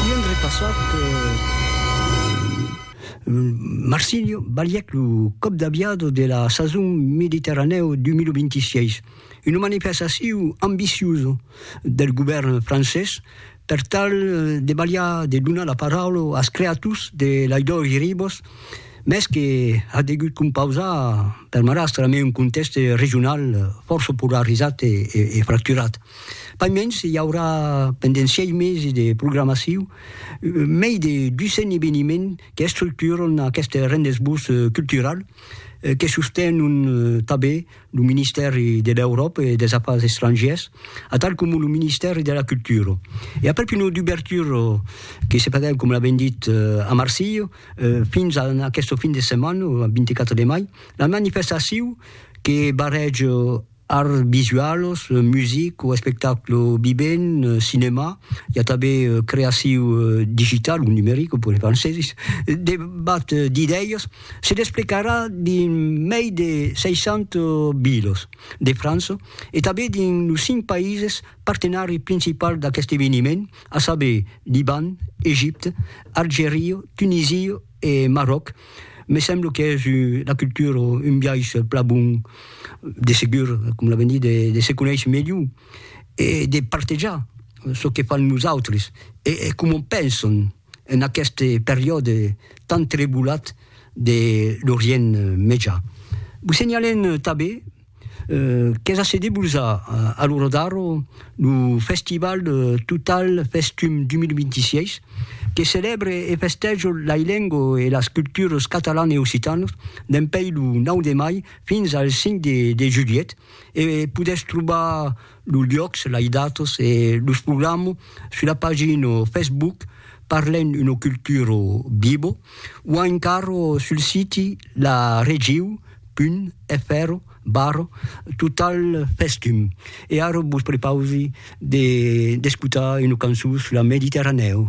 I an repassat Marsilio balhèc lo còp d'aviador de la sason Mediterranèo 2026, una manifestacion ambiciosa del govèrn francés per tal de balhar de donar la paraula als creators de Laidòri Ribòs, mès que a degut compausar per marrastre amé un contèxte regional fòrça polarizat e fracturat. Pas mens, i aurà pendent sièis mesi de programaciu mei de 200 eveniments qu'estructuran aqueste rendez-vous cultural que sostenon tanben lo Ministèri de l'Euròpa e dels Afars Estrangièrs atal coma lo Ministèri de la Cultura. E aprèp una dubertura que se faguèt, coma l'avèm dit, a Marsilha fins a aquesta fin de setmana, ath 24 de mai, la manifestaciu que barrèja Arts visualos, music o espectaclo vivent, cinèma, i a tanben creaciu digital o numeric, o puèi francesis, debat d'idèias se desplecarà dins mei de 60 vilas de França e tanben dins los cinc païses partenari principals d'aqueste eveniment, a saber, Liban, Egipte, Algeria, Tunisia e Marròc, me semblo qu'es una cultura, un biais plan bon, de segur, com la venir, de se conéisher melhor e de partejar çò que fan los autres e coma pensan en aquest periòde tan trebollat de l'Orient Mejan. Vos senhalem tanben. Qu'es a se debusar a lo Rodaro lo festival Total Festum 2026, que celèbre e festèja lai lengo e las cultures catalan e occitanas dempeis lo 9 de mai fins al 5 de juliet e podètz trobar Los luòcs, las datas e los programas sus la pagina Facebook Parlem una cultura viva o encara sul siti laregiu.fr barra totalfestum. E ara vos prepausi d'escotar una cançon sus la Mediterranèu.